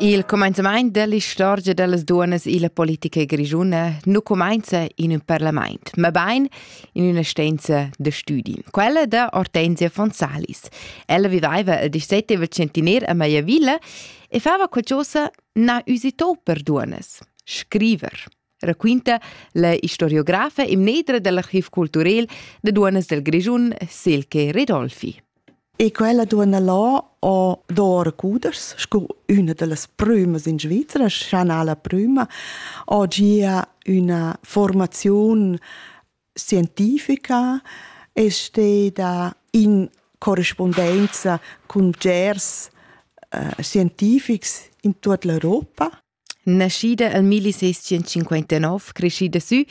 Il cumenzamaint dell'istorgia dellas duonnas illa politica grischuna nu cumainza in ün parlamaint, ma bain in üna stanza da stüdi, quella da Ortensia von Salis. Ella vivaiva il 17 centener a Maiavilla e fava qualchosa na üsitò per duonnas, scriver. raquinta la historiografa e mnedra dell'archiv culturel de duonas del Grischun, Silke Redolfi. E quella duonna là ha dor cudas, sco una delle prümas in Svizzera, Chanala prima, ha gia una formazione scientifica e steda in corrispondenza con gers uh, eh, scientifics in tutta l'Europa. Naschida el milliseschientscinquantanov creschida sü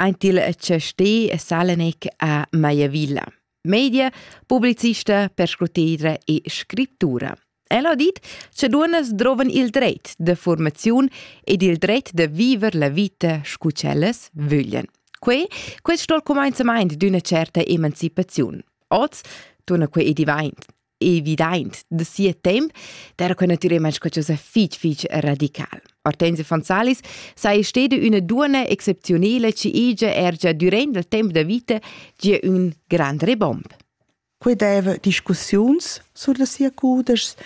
aint il chastè Salenec a Maiavilla. Media, publicista, perscrutedra e scrittura. El ha dit che duonas drovan il dret de formaziun ed il dret de viver la vita scu ch'ellas vöglien. Que, questo il comenzament d'una certa emancipaziun. Oz, torna que e divaint, evidaint da sia temp per que natürelmaing sco chosa fich fich radical. Hortense von Salis sai steda üna duonna excepziunela chi igia er già durant il temp da vita gia ün grand rebomb. Que deva discussiuns sur da sia cudeschs,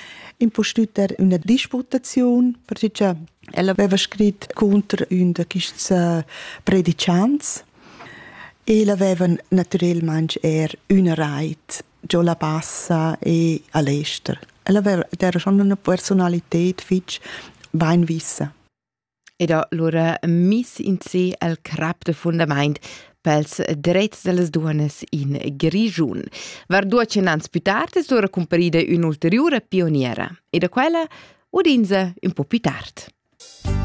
impustüt er üna disputaziun, perché ella aveva scrit contro ün da quists äh, predichants e l'aveva natürelmaing er üna rait giò la Bassa e a l'ester. Ella era schon üna personalität fich bainvissa. Ed ha lura miss in se al crap de fundament pels drets delles duones in Grigiun. Var duecen ans più tardi sura comparida un'ulteriore pioniera e da quella udinza un po' più tard.